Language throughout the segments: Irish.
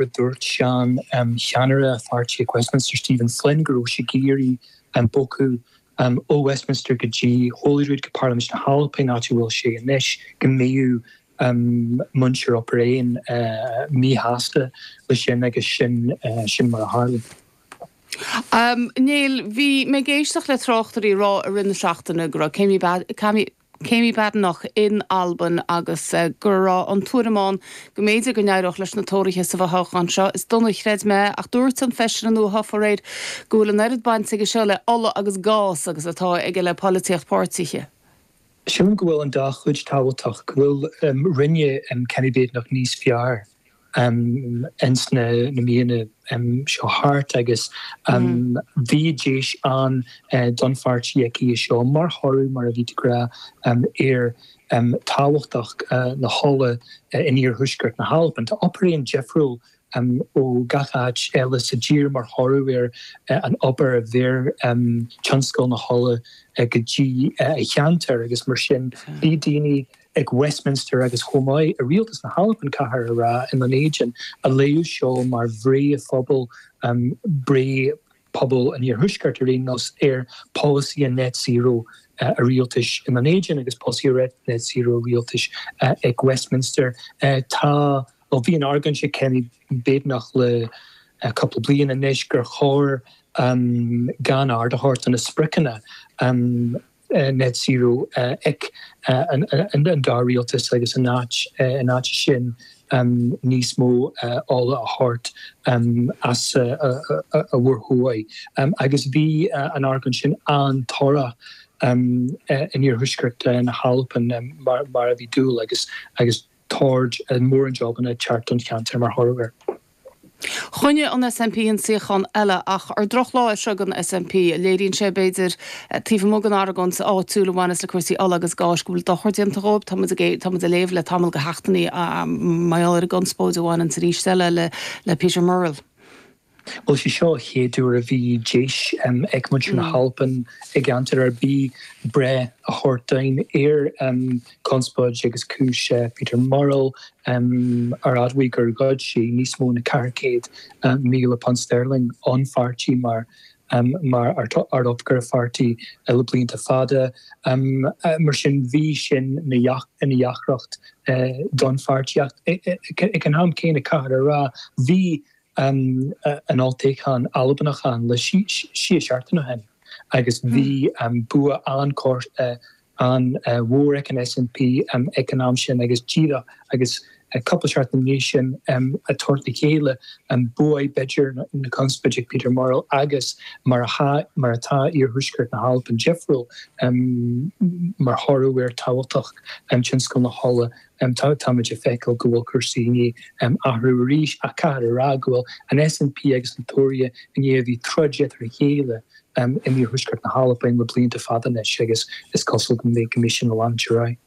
gur dhúirt seancheannaire an pháirtí ag Westminster, Stephen Flynn, go raibh sé ag iarraidh bogadh ó Westminster go dtí Holyrood, go Parlaimint na hAlban, áit a bhfuil sé anois, go mbeadh muintir Obar Dheathain míshásta leis sin agus sin mar a tharla. Néill, bhí mé ag éisteacht le tráchtairí ag rá i rith na seachtaine go raibh Kemi Kemi Badenoch in Albain agus go raibh an tuairim ann go mb'fhéidir go n-éireodh leis na Tóraithe sa bhfothoghchán seo. Is dóigh nár chreid mé, ach dúirt an feisire nuathofa aréir go bhfuil an oiread baint aige seo le ola agus gás agus atá aige le polaitíocht páirtithe. Sílim go bhfuil an dá chuid tábhachtach, go bhfuil, rinne Kemi Badenoch níos fearr ins na míonna seo thart agus bhí deis ann don pháirtí aici anseo mar thoradh, mar a bhí tú ag rá, ar tábhachtach na hola in oirthuaisceart na hAlban. Tá Obar Dheathain difriúil ó gach áit eile sa dtír mar thoradh ar an obair a bheir tionscal na hola go dtí an cheantar agus mar sin bhí daoine ag Westminster agus chomh maith i rialtas na hAlban, caithfear a rá, i nDún Éideann, ag léamh seo mar bhreith an phobail, breith pobail an Oirthuaiscirt ar aon nós, ar pholasaí an Net Zero an rialtais i nDún Éideann agus polasaí an Net Zero an rialtais ag Westminster. Tá, nó bhí an argóint ag Kemi Badenoch le cúpla bliain anois gur chóir gan aird a thabhairt do na spriocanna, net zero ag an dá rialtas agus in áit, in áit sin níos mó ola a thabhairt as an Mhuir Thuaidh agus bhí an argóint sin an-torrach in oirthuaisceart na hAlban mar a bhí dúil agus agus thabhairt ar mhórán jobanna ag teacht don cheantar mar thoradh air. Choinnigh an SNP an suíochán eile, ach ar drochlá é seo ag an SNP. Léiríonn sé, b'fhéidir, taobh amuigh den argóint áitiúil a bhaineas le cúrsaí ola agus gáis, go bhfuil dochar déanta dhóibh. Tá muid ag, tá muid ag léamh le tamall de sheachtainí mar gheall ar an gconspóid a bhaineanns arís eile le Peter Murrell. Bhuel, sé seo an chéad uair a bhí deis ag muintir na hAlban i gceantar ar bith breith a thabhairt dúinn ar conspóid agus cúis Peter Murrell ar admhaigh gur ghoid sé níos mó ná £400,000 Sterling ón pháirtí mar mar ardoifigeach an pháirtí le blianta fada. Mar sin bhí sin ina dheacracht don pháirtí ach ag an am céanna caithfear a rá bhí an olltoghchán Albanach ann le sé seachtaine ó shin agus bhí bua an-mhór ag an SNP ag an am sin agus díreach agus cúpla seachtain i ndiaidh sin ag tabhairt le chéile, bhuaigh b'fhéidir na conspóidí Peter Murrell agus mar atá iarthuaisceart na hAlban difriúil mar thoradh ar tábhachtach tionscal na hola em tá táimid ag feiceáil go bhfuil cúrsaí i ndiaidh em athrú arís ach caithfear a rá go bhfuil an SNP agus na Tóraithe i ndiaidh a bheith ag troid eatarthu a chéile em in iarthuaisceart na hAlban le blianta fada anois agus is cosúil go mbeidh go mbeidh sin ag leanúint ar aghaidh.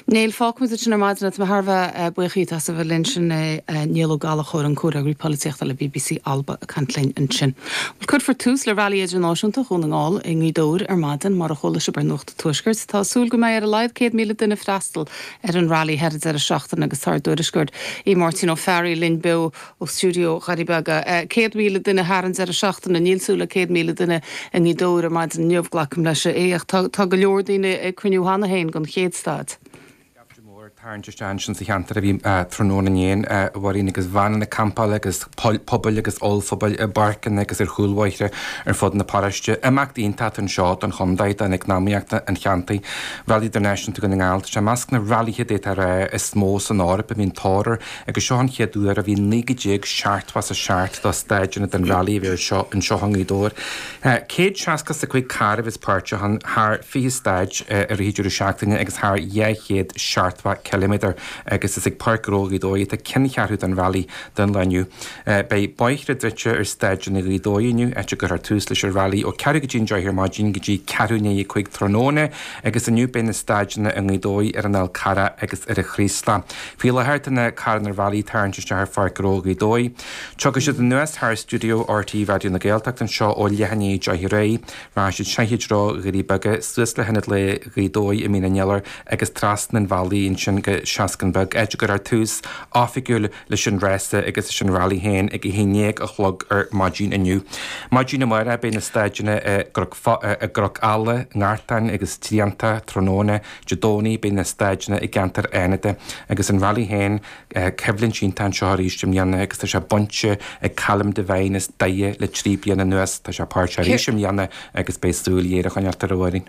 Néill, fágfaimid é sin ar maidin. Tá mé thar a bheith eh buíoch díot as a bheith linn. Sin é eh Niall Ó Gallachóir, an Comhfhreagraí Polaitíochta le bbc Alba ag caint linn ansin. Bhuel cuirfear tús le Railí Idirnáisiúnta Dhún na nGall i nGaoth Dobhair ar maidin mar a chuala sibh ar Tuaiscirt. Tá súil go mbeidh ar a laghad 100,000 duine ag freastal ar an Railí thar an deireadh seachtaine agus tá ár dtuairisceoir, Aodh Máirtín Ó Fearraigh, linn beo ó stiúideo Dhoirí Beaga. 100,000 duine thar an deireadh seachtaine? Níl súil le 100,000 duine i nGaoth Dobhair ar maidin inniu, glacaim leis, a Aodh, ach tá go leor daoine ag cruinniú cheana féin don chéad stáid. Scaifte mór ag tarraingt isteach ansin sa cheantar ó bhí tráthnóna inné ann, a Mháirín agus veaineanna campála agus pubaill agus ollphubaill i bpáirceanna agus ar chúlbhóithre ar fud na paróiste. Imeacht iontach anseo don chontae, don eacnamaíocht an cheantair. Railí Idirnáisiúnta Dhún na nGall, tá sé i measc na railíthe d'fhéadfá a rá is mó san Eoraip a bhíonn tóir air agus seo an chéad uair ó bhí 19 seachtó is a seacht do stáideanna den railí a bheith ar siúl anseo i nGaoth Dobhair. Céad seasca is a cúig carr a bheas páirteach ann, thar fiche stáid i rith dheireadh seachtaine agus thar dhá chéad seachtó ciliméadar agus is ag Páirc Ghnó Ghaoth Dobhair atá ceanncheathrú don Railí don lá inniu. Beidh bóithre druidte ar stáideanna Ghaoth Dobhair inniu, áit a gcuirfear tús leis an Railí ó ceathrú go dtí an deich ar maidin go dtí ceathrú i ndiaidh a cúig tráthnóna agus inniu beidh na stáideanna i nGaoth Dobhair, ar an Fhál Charrach agus ar an Chraoslach. Faoi láthair tá na carranna railí ag tarraingt isteach ar Pháirc Ghnó Ghaoth Dobhair. Tiocfaidh siad anuas thar stiúideo rte Raidió na Gaeltachta anseo ó leath i ndiaidh a deich ar aghaidh, rachaidh siad soir i dtreo Dhoirí Beaga, suas le hIonad Lae Ghaoth Dobhair i Mín an Iolair agus trasna an bhealaigh ansin go Seascann Beag, áit a gcuirfear tús oifigiúil leis an rása agus leis an railí féin ag a haon déag a chlog ar maidin inniu. Maidin amárach beidh na stáideanna i gCnoc Ealla, i nGartán agus Tríonta, tráthnóna Dé Domhnaigh beidh na stáideanna i gceantar Fhánada agus an railí féin coimhlint iontach anseo arís i mbliana agus tá sé bainte ag Callum Devine as Doire le trí bliana anuas. Tá sé páirteach arís i mbliana agus beidh súil ghéar á coinneáilt ar a fhoireann.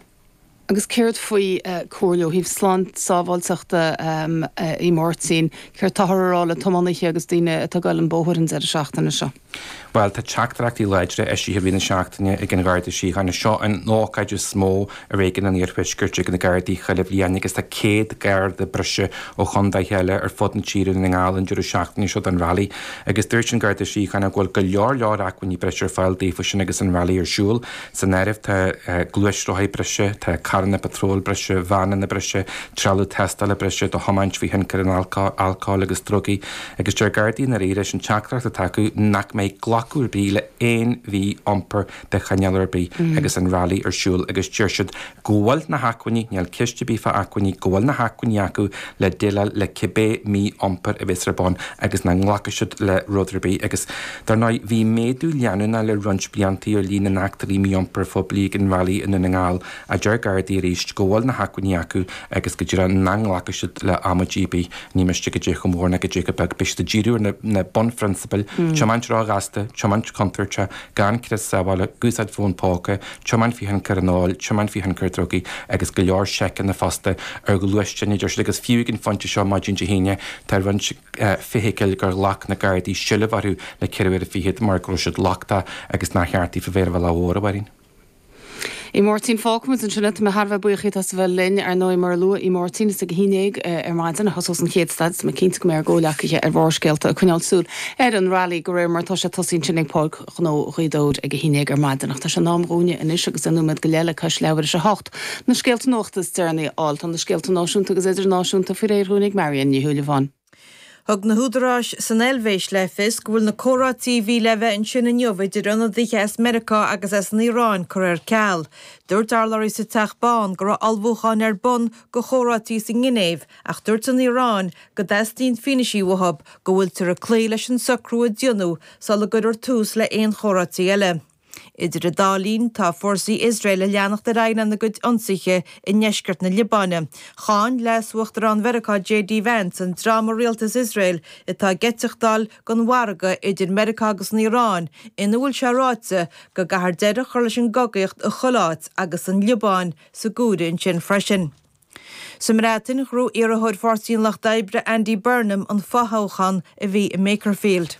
Agus céard faoi comhairle ó thaobh sláinte, sábháilteachta a Aodh Máirtín? Céard atáthar a rá le tiománaithe agus daoine atá ag gabháil an bóthar an deireadh seachtaine seo? Bhuel, tá teachtaireachtaí láidre eisithe i rith na seachtaine ag an Gharda Síochána. Seo an ócáid is mó i réigiún an Iarthuaiscirt ag na Gardaí chuile bhliain agus tá 100 Garda breise ó chontaetha eile ar fud na tíre le fáil an deireadh seachtaine seo don Rally agus dúirt an Garda Síochána go bhfuil go leor leor acmhainní breise ar fáil daofa sin agus an Rally ar siúl. San áireamh tá gluaisrothair breise, tá carranna patróil breise, veaineanna breise, trealamh tástála breise do thiomáint faoi thionchar an alcóil agus drugaí, agus deir Gardaí gurb í leis an teachtaireacht atá acu nach mbeidh glacadh ar bith le haon mhí-iompar de chineál ar bith agus an railí ar siúl agus deir siad go bhfuil na hacmhainní, níl ceist ar bith fá acmhainní, go bhfuil na hacmhainní acu le déileáil le cibé mí-iompar a bheas ar bun agus nach nglacfaidh siad le rud ar bith agus dar ndóigh bhí méadú leanúnach le roinnt blianta ar líon na n-eachtraí mí-iompair phoiblí ag an railí i nDún na nGall a deir Gardaí arís go bhfuil na hacmhainní acu agus go deimhin nach nglacfaidh siad le h-amaidí ar bith, ní miste goidé chomh mór ná goidé chomh beag, beidh siad ag díriú ar na bunphrionsabail, tiomáint ró-ghasta, tiomáint contúirteach, gan crios sábhála, úsáid fón póca, tiomáint faoi thionchar an óil, tiomáint faoi thionchar drugaí agus go leor seiceanna fosta ar ghluaisteáin, a deir siad, agus fiú ag an phointe seo maidin Dé hAoine tá roinnt feithicil gur ghlac na Gardaí seilbh orthu le ceithre uaire fichead mar go raibh siad lochtach agus nár cheart iad a bheith ar an bhealach mhór, a Mháirín. Aodh Máirtín, fágfaidh muid ansin é. Tá mé thar a bheith buíoch díot as a bheith linn. Ar ndóigh, mar a luaigh Aodh Máirtín, is ag a haon dhéag ar maidin a thosós an chéad staid. Tá mé cinnte go mbeidh ár gcomhleacaithe ar Bharrscéalta ag coinneáil súil ar an rally de réir mar atá sé ag tosaí ansin ag Páirc Ghnó Ghaoth Dobhair ag a haon déag ar maidin. Ach tá sé in am dhúinne anois agus aon nóiméad go leith le cois leathuair is a hocht, na scéalta nuachta is deireanaí a fháil. Tá na scéalta náisiúnta agus idirnáisiúnta faoi réir dhúinn ag Marion Ní Shúilleabháin. Thug na húdaráis san Eilvéis le fios go bhfuil na comhráití a bhí le bheith ansin inniu idir ionadaithe as Meiriceá agus as an Iaráin curtha ar ceal. Dúirt urlabhraí sa Teach Bán go raibh ullmhúcháin ar bun do chomhráití sa nGinéiv ach dúirt an Iaráin go dteastaíonn fianaisí uathu go bhfuiltear ag cloí leis an socrú a déanadh sula gcuirfear tús le haon chomhráití eile. Idir an dá linn, tá fórsaí Iosrael ag leanacht ar aghaidh lena gcuid ionsaithe i ndeisceart na Liobáine. Cháin Leas-Uachtarán Mheiriceá JD Vance an dream i rialtas Iosrael atá ag eiteachtáil den mhargadh idir Meiriceá agus an Iaráin ina bhfuil sé ráite go gcaithfear deireadh a chur leis an gcogaíocht i chuile áit agus an Liobáin san áireamh ansin freisin. Sa mBreatain, ghnóthaigh iarrthóir Pháirtí an Lucht Oibre Andy Burnham an fothoghchán a bhí i Makerfield.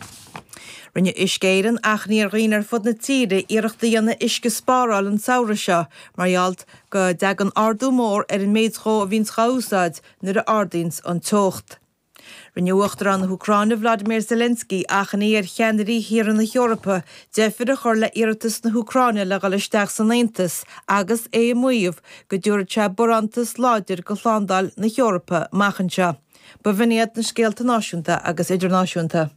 Rinne Uisce Éireann achainí ar dhaoine ar fud na tíre iarracht a dhéanamh uisce a spáráil an samhradh seo mar gheall go dtagann ardú mór ar an méid dhó a bhíonns dhá úsáid nuair a ardaíonns an teocht. Rinne Uachtarán na hÚcráine Vladimir Zelensky achainí ar cheannairí thíortha na hEorpa deifir a chur le hiarratas na hÚcráine le dhul isteach san Aontas agus é ag maíomh go dtabharfadh sé barántas láidir do shlándáil na hEorpa amach anseo. B'in iad na scéalta náisiúnta agus idirnáisiúnta.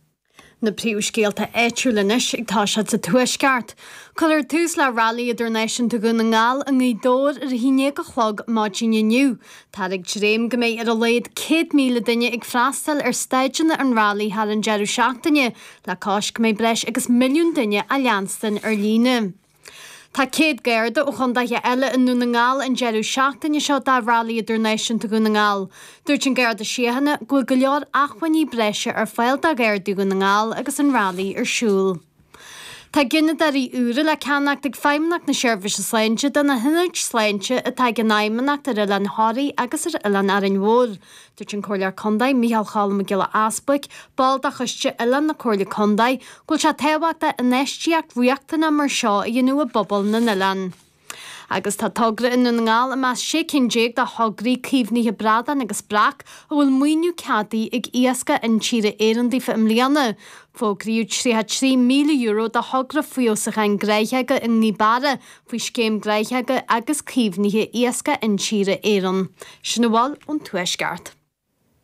Na príomhscéalta áitiúil anois ag toiseacht sa Tuaisceart. Cuirfear tús le Railí Idirnáisiúnta Dhún na nGall i nGaoth Dobhair ar a 11 a chlog maidin inniu. Táthar ag dréim go mbeidh ar a laghad 100,000 duine ag freastail ar stáideanna an railí thar an deireadh seachtaine, le cois go mbeidh breis agus milliún duine á leanstan ar líne. Tá céad garda ó chondaetha eile i nDún na nGall an deireadh seachtaine seo do Railí Idirnáisiúnta Dhún na nGall. Dúirt an Garda Síochána go bhfuil go leor achmhainní breise ar fáil do Ghardaí Dhún na nGall agus an Railí ar siúl. Tá gineadóirí úra le ceannacht ag Feidhmeannacht na Seirbhíse Sláinte do na hionaid sláinte atá ag an Fheidhmeannacht ar Oileán Thoraí agus ar Oileán Árainn Mhór. Dúirt an Comhairleoir Contae Micheál Choilm Mac Giolla Easbuig, ball de choiste oileán na Comhairle Contae, go bhfuil sé tábhachtach infheistíocht riachtanach mar seo a dhéanamh i bpobail na n-oileán. Agus tá togra i nDún na nGall i measc sé cinn déag de thograí caomhnaithe bradán agus breac a bhfuil maoiniú ceadaithe ag Iascaigh Intíre Éireann daofa i mbliana. Fógraíodh €33,000 do thogra feabhsúcháin gnáthóga i nGaoth Beara, faoi scéim gnáthóga agus caomhnaithe Iascaigh Intíre Éireann, sin a bhfuil ón Tuaisceart.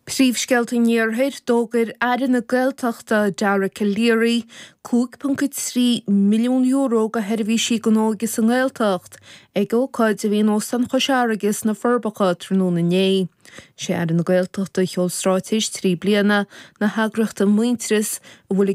Príomhscéalta an Iarthair, D'fhógair Aire na Gaeltachta, Dara Calleary, €5.3 milliún do sheirbhísí don óige sa nGaeltacht ag ócáid a bhí in Óstán Chois Fharraige sna Forbacha tráthnóna inné. Is é Aire na Gaeltachta a sheol stráitéis trí bliana na heagraíochta Muintearas a bhfuil a